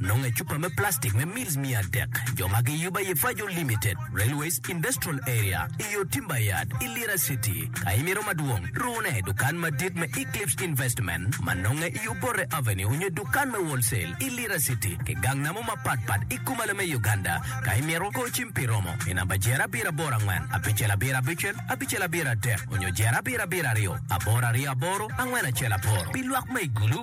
nongo ecupa me plastic me mils miya adek jo ma giyubo aye Fajo Limited, Railways Industrial Area, i yo Timber Yard i Lira City. Ka imito madwong, rune i dukan madit me Eclipse Investment ma nonge i yo Borre Avenue onyo i dukan me Wholesale i Lira City ki gang namo mapat pat i Kumalo me Uganda. Ka imito, go cim pi romo i namba jero abiro aboro angwen abicel abiro abicel abicel abiro adek onyo jero abiro abiro aryo aboro aryo aboro angwen acel aboro. Pi lwak ma i gulu,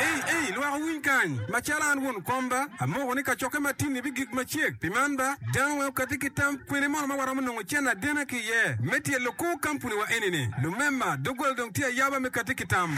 Ei, ei, lwak owiny kany! Macalo an won komba, amoko ni kacokke matini bigik macek. Pi man ba, dano weng okatti ki tam kwene mono ma waromo nongo cen adena ki iye me tyelo kor kampuniwa eni-ni. Lumema, doggola dong tye ayaba me katti ki tam.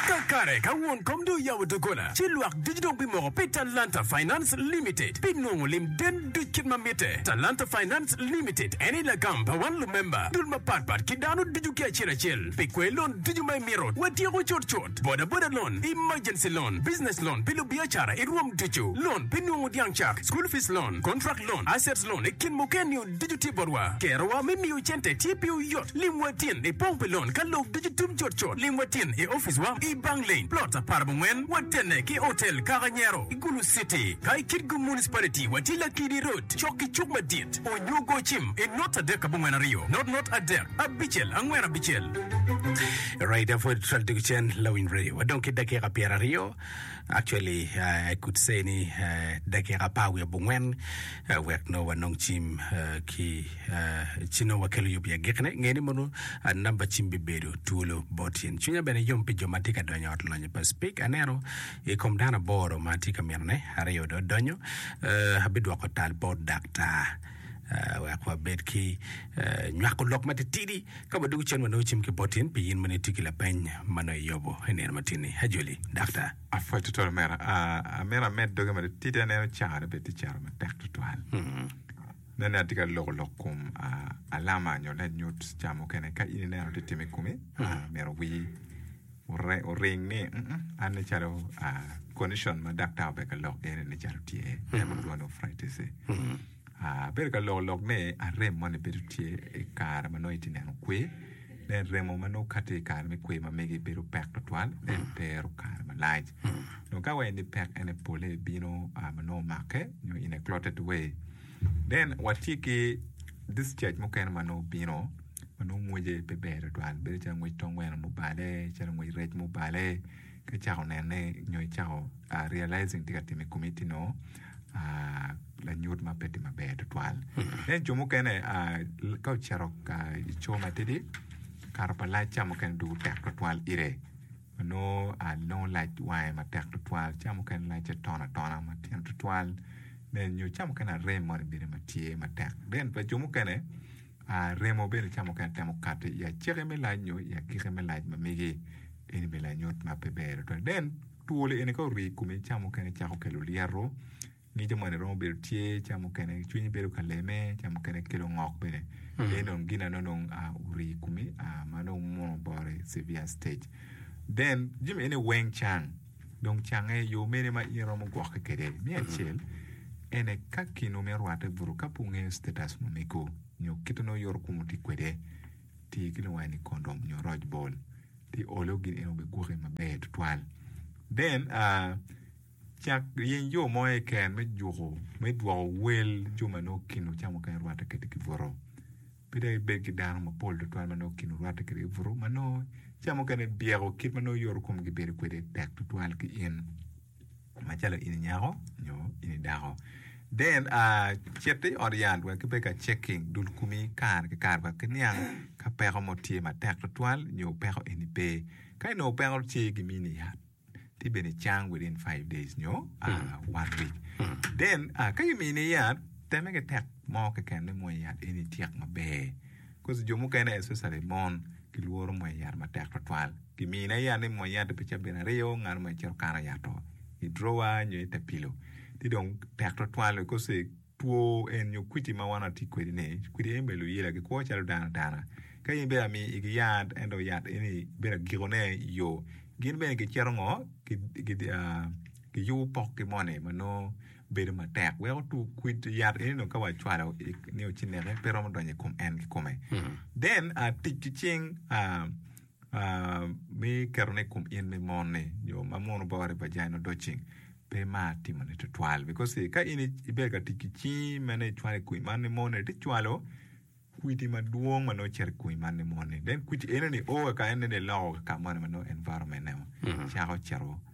Kakare, ka won kom dong oyabo doggola, ci lwak ducu dong bimoko pi Talanta Finance Limited pi nongo lim den duc kit ma mitte. Talanta Finance Limited en aye lagam pa wan lumemba, dul mapatpat ki dano ducu ki acel acel. Pi kwer lon ducu ma imito, watyeko cut cut. Bodaboda loan, emergency loan, business loan pi lubiacara i rwom ducu, loan pi nungu dyang cak, school fees loan, contract loan, assets loan i kin mukene-ni ducu tye botwa. Kerowa me miyo cente tye piwu yot. Limwa tin i pong pi lon ka lok ducu tum cut cut. Limwa tin i oficwa i Bang Lane, Plot aparabongwen, watenne ki Hotel Kaka Nyero i Gulu City. Ka i Kitgum Municipality, watye Lakidi Road cok ki cuk madit. Onyo go cim i not adek abongwen aryo, not not adek. Abicel, angwen abicel. Alright, da pwod twal tuku cen lawiny radio. Wadong ki dakika pyera aryo. Actually, uh, I could say ni uh, dakika apar wiye bungwen uh, wek no wanong cim uh, ki uh, ci nong wakelo yub ya gikne. Ng'e ni mono uh, namba cim bibedo twolo bot yen. Cwinya bene yom pi jo ma tye ka donyo ot lonyo pa speak. Aneno i kom dano aboro ma tye ka mitone, aryo do donyo. Uh, abidwoko tal bot daktar. wek wabed ki nywako lok matitidi ka wadwogo cen wanongo cim ki bot in pi in ma nitye ki lapeny ma nongo iyobo i nino matini. Ajoli, dakta. Apwoc tutwal omera. Ah, amito amed doge matitidi aneno caro bene tye caro matek tutwal. Nen ni atye ka loko lok kom ah, alama nyo lanyut ca mukene ka in ineno tye tim i komi, ah, myero wi oring ni an ni calo condition ma daktar obedo ka lok kwede ni calo tye en ma kilwongo ni arthritis ni abedo ka loko lok ni arem moni bedo tye i kare ma nongo itye neno kwe then remo ma nongo kati i kare me kwe ma mege bedo pek tutwal then tero kare malac dong ka waneno ni pek ene pole bino ma nongo omake nyo in a clotted way then watye ki discharge mukene ma nongo bino ma nongo ngwece pe ber tutwal bedo calo ngwec tung gweno ma obale calo ngwec rec ma obale ka icako nene nyo icako realizing tye ka tim i komi tye nongo lanyut ma pe tye maber tutwal ento jo mukene ka ocito i co matidi kato pa lac ca mukene dong tek tutwal ite ma nongo lac wange matek tutwal ca mukene lacce tono atona matino tutwal nyo ca mukene arem moni bene ma tye matek then pa jo mukene A Remo bene ca mukene temo kati i aceke me lac nyo i agike me lac ma megi. Eni me lanyut ma pe ber adada. Nen, twolo eni ka orii i komi, ca mukene cako kelo lyeto, ngico moni romo bedo tye, ca mukene cwinyi bedo ka leme, ca mukene kelo ngok bene. Eni dong gin ano dong a orii i komi a ma dong muno bore severe stage. Then, jami eni weng cang. Dong cange, yo mene ma in iromo gwokke kwede? Me acel, ene ka kinwu me rwatte buto. Ka pe wungeyo status ma omego nyo kit ma nongo yoro komwu tye kwede, ti ki lungwa ni condom nyo roc bol, ci olo gin eno gigwoki maber tutwal. Then, cak yeny yo mo keken me juko, me dwoko wel jo ma nongo kinwu ca mukene rwatte kwede ki buto. Pe dong ibed ki dano mapol tutwal ma nongo kinwu rwatte kwede i buto, ma nongo ca mukene byeko kit ma nongo yoro komgi bedo kwede tek tutwal ki in, macalo in i nyako nyo in i dako. Then, uh, cit i ot yat wek kibed ka checking dul komi kare ki kare wek kiniang ka peko mo tye matek tutwal nyo peko eni pe. Ka inongo peko tye, gimiyi ni yat. tye bene cang within five days nyo one week then ka gimiyo ni yat teme ki tek mo keken me mwony yat eni tyek maber cause jo mukene especially mon gilworo mwony yat matek twatwal gimiyo ne yat ni mwony yat pi caben aryo ngat mo cito kano yat oo i drawer nyo i te pillow ci dong tek twatwal cause Two en nyo kwidi ma wan watye kwedi ni kwidi en bene luyela gikwo calo dano atana. Ka in bene amiyo igi yat ento yat eni bedo agikone i yo, gin bene gicito ngo? Giyubo pokgi moni ma nongo bedo matek weko two kwid yat eni dong ka wacwalo nio ci neke pe romo donyo i kom en kikome. Then tic ki cing. Me ketone i kom in me mon ni nyo ma mono bore vagina odo ceng pe mar timo ne tutwal because ka in ibedo ka tic ki cingi mene i cwalo i kwir man ni moni ti cwalo kwidi madwong ma nongo cito i kwir man ni moni then kwidi eno ni o kaka en nene loko kaka moni ma nongo environment eno cako cito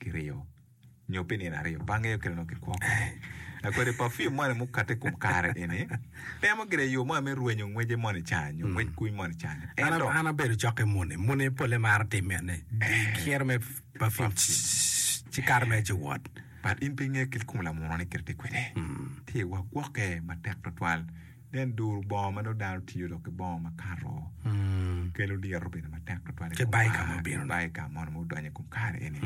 kiryo nyo pi nino aryo, bange aye okelo nongo kigwoko. Dak kodi pafim moni mukatte i kom kare eni, temo gire yo moni me rwenyo ngwece moni ca nyo ngwec kuny moni ca nyo. An, Ento, an abedo cokke muni. Muni polle maro timme ni kiro me pafim ci kato mere ci wot. but in pe ingeyo kit kom lamuno ni kite tye kwede. Tye wa gwokke matek twatwal. Nen duru bongo ma nongo dano tiyo dok ki bongo makato kelo lyeto bedo matek tutwal Ki bayo ka ma obino-ni. ki bayo ka mono ma odonyo i kom kare eni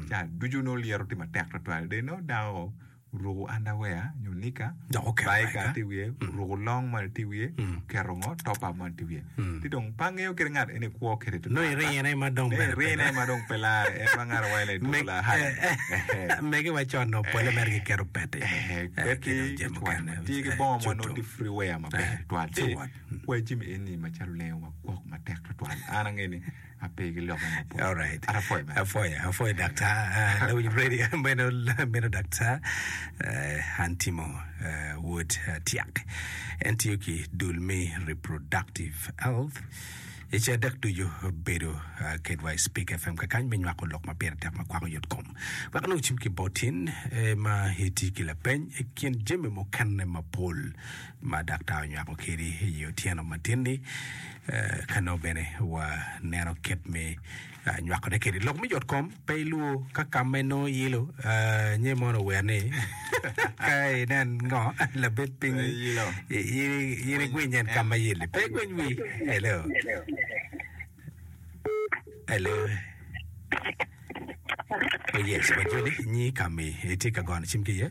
ca ducu nongo lyeto tye matek tutwal dong nongo dako oruku underwear nyo nika Dok oketo bayo bayo ka ka. tye i wiye oruku long moni tye i wiye oketo ngo top up moni tye i wiye Ti dong pe angeyo kit ngat en ikwo kede tutwal. Nongo irine ma dong bene pe. Irine ma dong pe lare en ma ngara wa ile tuko la haya. Megi wa con no pole mere ki keto peti. Peti tutwal ma ti ki bongo mo no ti free wear ma ber tutwal. Ci wa jimi eni ma calo lengo wa gwok matek tutwal. An ange ni. Alright. Apwoyo, apwoyo daktar. Ah, lawiny ready. Meno, meno daktar. Eh, an timo eh, wod eh, tyak. En tiyo ki dul me reproductive health. Ice adek ducu bedo ah, kedwa i Speak FM kakany me nywako lok ma pire tek ma kwako yot kom. Wek nongo cim ki botin eh, ma iti ki lapeny i kin jami mukene mapol ma daktar onywako kedi i otyeno matin-ni, ka nongo bene waneno kit me nywakone kedi. Lok me yotkom pe ilwor ka kam ma inongo iyilo, nye mono ower ni ka inen ngo labed piny in igwiny en kam ma iyil-li. Pe igwiny wii. Hello. Hello. Oh yes, wajoli nyi kami itye ka gono cim ki iye?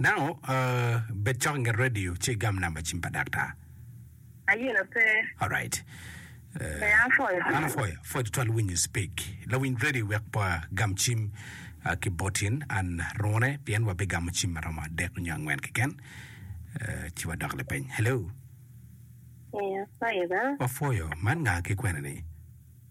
Now, uh, bed cok nge radio ci igam namba cim pa daktar. Ayino pe. Alright. Pe an foyo. An afoyo, afoyo tutwal winyo speak. Lawiny radio wek pa gam cim uh, ki botin an rone pien wabigamo cim maromo adek nyo angwen keken. Uh, ci wadok lapeny. Hello. Ee, afoyo ba. Wafoyo, man nga ki kwene ni?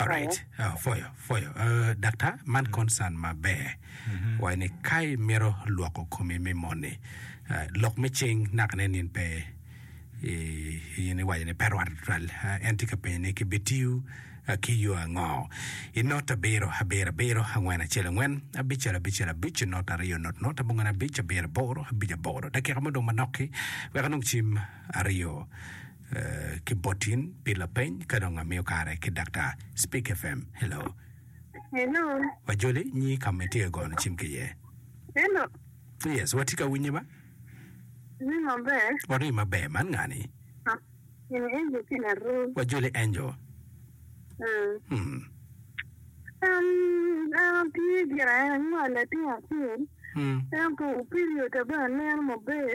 Alright, ah, foyo, foyo. Ah, daktar, man concern maber. Waye ni ka imito lwoko komi me moni, ah, lok me cing naka ne nin pe i- in iwaco ni pe rwatte tutwal. Ah, en tye ka penyo ni kibitiyo ah, ki yo ango? I not abiro, abiro, abiro, angwen, acel, angwen, abicel, abicel, abic, not aryo, not, not, abongwen, abic, abiro, aboro, abic, aboro. Dakika mo dong manok-ki, wek anong cim aryo. ki botin pi lapeny ka dong amiyo kare ki daktar speak fm hello Hello. wajoli nyi kama itye gono cim ki iye Hello. yes watye ka winyi ma Ni maber. wari maber man ngani Ha. Ini enjo ki laruu. wajoli angel Hmm. hmm. Um, an atye gire ango latin acel. hmm. Ento period ba aneno maber.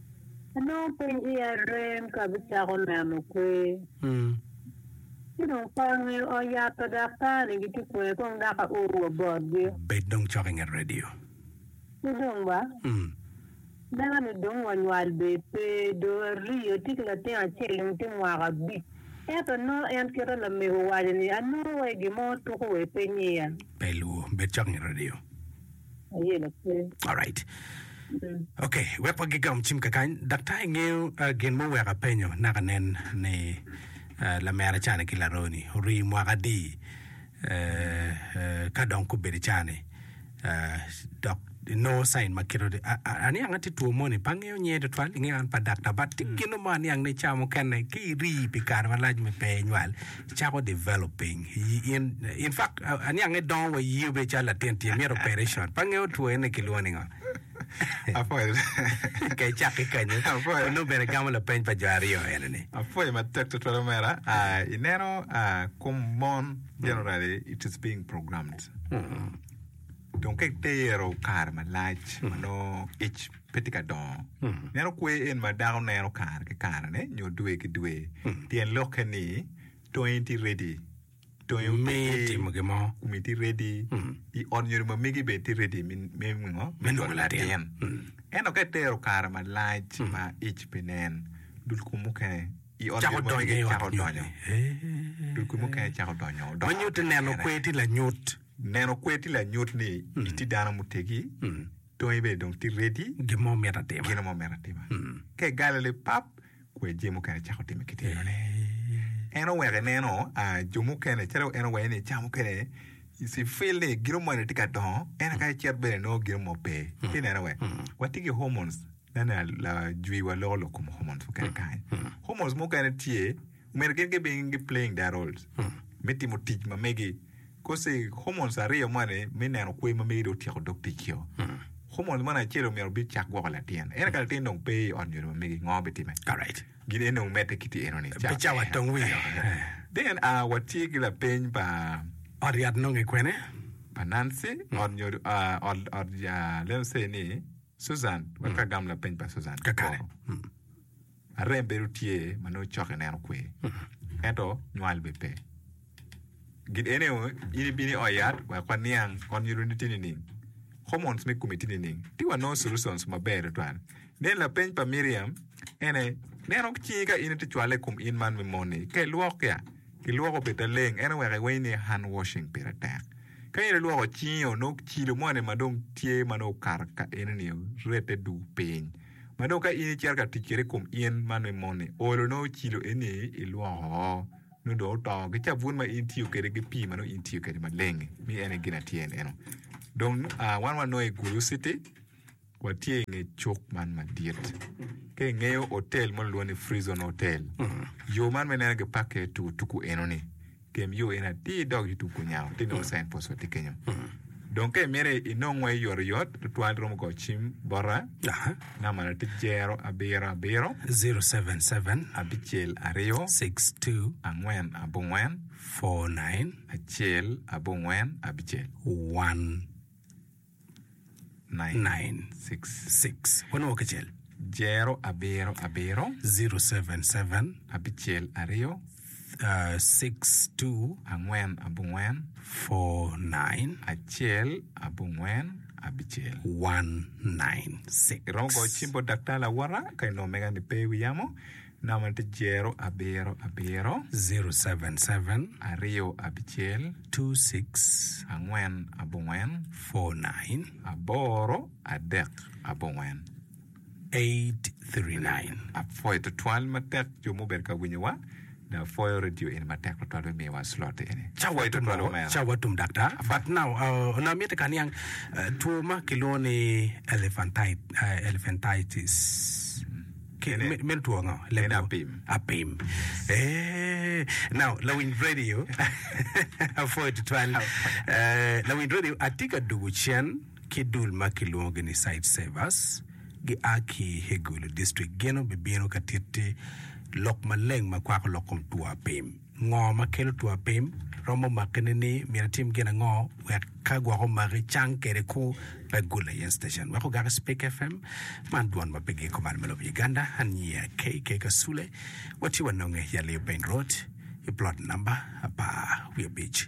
Anongo pe iya rem ka abicako neno kwer. Ci dong ka ongeyo ot yat pa daktar-ni gitye kwer, kong dok aor wa botgi. Bed dong cok i nget redio. Ci dong ba, aneno ni dong wanywal bee pe, dong arii atye ki latin acel dong tye mwaka abic. Ento anongo en kit ma lamego owaco-ni, anongo wai gin mo tuko wa i piny iya. Pe ilwor, bed cok i nget redio. Aye lakir. Alright. Ok, wek wagigam cim kakany, daktar ingeyo ah, gin ma oweko apenyo naka nen ni ah, lamera cani ki laroni orii mwaka adi eh, eh, ka dong kubedo cani ah, dok inongo sain ma kiro ah, ah, aniang ati two moni pa angeyo nyer tutwal ingeyo an pa daktar but ti gino mo aniang ni ca mukene ki irii pi kare malac me pe inywal Icako develop piny in in fact aniange dongo wa yii obedo calo latin tye myero operation pa nge otwo ene kilwongo ningo Apol. ka icak ki kanyo Apoyo. onongo bene gamo lapeny pa jo aryo ene ni Apwoyo matek tutwal omera. Ah, ineno ah, kom mon generally it is being programmed. Dong ka itero kare malac ma nongo ic pe tye ka dongo. Meno kwer en ma dako neno kare ki karene nyo dwe ki dwe. Tyen lokke ni, tongi tye ready. Tongi oteggi. Me timo gin mo. Kumi tye ready. I ot nyodo ma megi bene tye ready me nino? Me nywako latin. Ento ka itero kare malac ma ic pe nen, dul kumi mukene i ot nyodo ma megi cako donyo. Dul kumi mukene cako donyo. Odoko Ma nyutti neno kwer tye lanyut. Neno kwer tye lanyut ni itye dano muteggi. Tongi ibedo dong tye ready. Gin mo mito atima. Gin mo mito atima. Mm. Ka igalo li pap, kwer jami mukene icako timi ki tinone. Eh. En oweko ineno ah, jo mukene, calo en owaco ni ca mukene si feel ni gino moni tye ka dongo, ento ka icit bene inongo gino mo pe. Ci ineno wek, watye ki hormones, nene la- lajwiwa loko lok kom hormones mukene kany. Hormones mukene tye Omyero gin gibin gi playing their roles me timo tic ma megi coz i hormones aryo moni me neno kwe ma megi dong otyeko dog tic yo hormones moni acel omyero bi cak gwoko latin ento ka latin dong pe i ot nyodo ma megi ngo bitime Alright. gin ene dong omedde ki ti eno ni Pe cawa tong wiyo. then ah, watye ki lapeny pa Ot yat nonge kwene? pa Nancy ot nyodo ah, ot ot ah, let us say ni Susan wek agam lapeny pa Susan Kakare. koro. Mm. Arem bedo tye ma nongo cok i neno kwer, ento nywal bene pe. Gin ene aye, in ibino i ot yat wek waniang ot nyoloni tye nining? Hormones me komi tye nining? Ci wanongo solutions maber tutwal. Nen lapeny pa Miriam, en aye, Neno ki cingi ka in itye cwale i kom in man me moni, ka ilwok ya, ilwoko obed laleng, en oweko iweny ni hand washing pire tek. Ka in ilwoko cingi-o, nongo kilo moni ma dong tye ma nongo okato ka eno-ni orette duu piny. ma dong ka in icito ka tic kwede i kom in ma nongo moni oolo nongo ocilo eni ilwoko oo nongo dong oto ki cabun ma in itiyo kwede ki pii ma nongo in itiyo kwede maleng ni en aye gin atyer neno dong wan wanongo i gulu citi watye inge cuk man madit ka ingeyo otel mo lulwongo ni Frizon hotel yo man ma ineno gipakke tuku tuku enoni Tim yo in atir idog YouTube ku nya ti nongo sign post wa ti kenyo. Dong ka imito inong wa yot oyot tutwal romo go cim bota. Aha. Namba na ti jero abiro abiro. 077. Abicel aryo. 62. Angwen abongwen. 49. Acel abongwen abicel. 1. 996. Jero abiro abiro. 077. Angwen abongwen. 49. Iromo goyo cim bot daktar lawota ka inongo mega ni pe i wi yamo. Namba tye zero abiro abiro. Zero seven seven. Aryo abicel. Two six. Angwen abongwen. Four nine. Aboro adek abongwen. Eight three nine. Apwoyo twatwal matek jo mubedo ka winyo wa dok apwoyo radio eni matek twatwal me miyo wa slot eni. Cawa tum balo, cawa tum dakta but now onongo amiti ka niang two ma kilwongo ni elephantitis. Kene. Me- medo two ngo leb En dwogo. apim. apim Eh, now lawiny radio apwoyo tutwal Eh, lawiny radio atye ka dugu cen ki dul ma kilwongogi ni site savers gia ki hegulu district gin obibino ka titti lok maleng ma kwako lok kom two apim Ngo ma kelo two apim? Romo make nini? Myero atim gin ango wek ka gwok omaki cang kede ku pe gule yen station wek ogaki speak FM man dwon ma pe giko malo me lobo Uganda aniya KK Kasule watye wanonge Yaleo Peng Road I plot number apar wiye abic.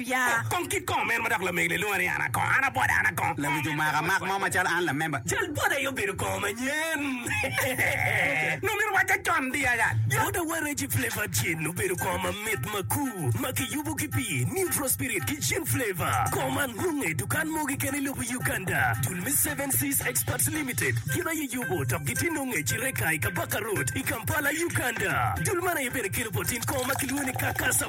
Pia kong kit kong men ma dok lamegi lilunga ni an akong, an abwota, an akong. Lawic omaka mak mo macalo an lamemba. Cal bwota aye obedo kong manyen. Nongo myero owacca con di aya. Bwota wa Reggie Flavour Gin obedo kong mamit makur ma kiyubo ki pi Neutral Spirit ki Gin Flavour. Kong man nonge i dukan mogo keken i lobo Uganda. Dul me Seven Seas Exports Limited gin aye yubo dok gitye nonge i Kireka i Kabaka Road i Kampala, Uganda. Dul man aye bene kelo botin kong ma kilwongo ni Kakasa.